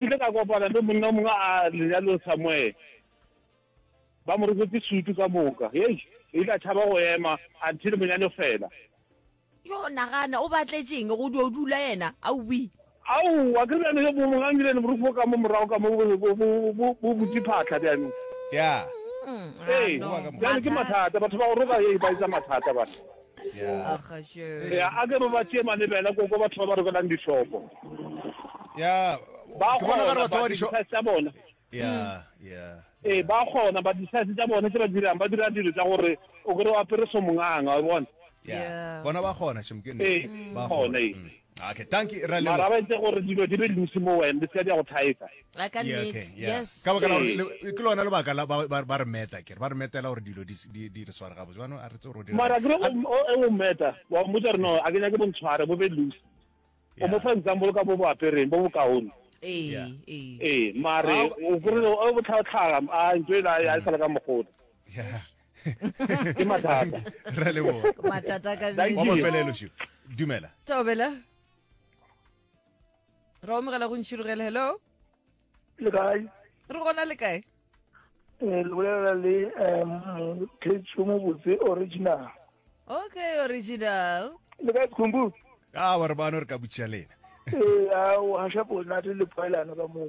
Ke ile ka kopana le monna o mongwe a lenyalong somewhere, ba mo roketse sutu ka moka. Hei, o ile a tšhaba go ema until monyalo fela. Yo, nagana, o batletše'ng go dio dula yena? Aowii! Aowa, ke bjale yo mongwe a nyile le borukhu bo ka mo morago ka mo bo, bo, bo, bo butše phatla bjang. Yeah. Ee, Ano, bjale ke mathata. mathata. Batho ba go roka, hei, ba etsa mathata bana. ya a ke ba tšee malebela ko ko batho ba ba rokelang dihlopo ya ba gona ba batho ba dihlopo tsa bona ya ya e ba gona ba disase tsa bona se ba dirang ba dira dilo tsa gore o kore wa pere somonganga wa bona ya bona ba gona chimkene ba gona Okay, dankie Rra Leboga. Mara ba etse gore dilo di be loose mo wena, di se ka di a go thaetsa. A ka Yeah, okay, nnete, yeah. yes. Ka baka la gore Ee. le- ke lona lebaka la ba ba- ba re meta kere ba re metela gore dilo di s- di di re sware gabotse jaanong a re tse gore o dira Mara kere A- o o- o meta, wa mmotsa gore no, a ke nyake bontshware, bo be loose. O Yeah. mo fa example ka bo bo apereng, bo bokaone. Ee, Yeah. ee. Ee, mare, Ah, o kore o botlhatlhaga, a ntho e la, ya e sala ka mogoda. Yeah. ke mathata ra le bona matata ka Thank wa you. mafelelo širo dumela tobela ra omogela go ntšhirogela hello le kae re gona le kae Eh, le bolela le um khetso mo botse original okay original le kae khumbu a wa re bano re ka botšiša lena ee a o hasha bonate le poelano ka moo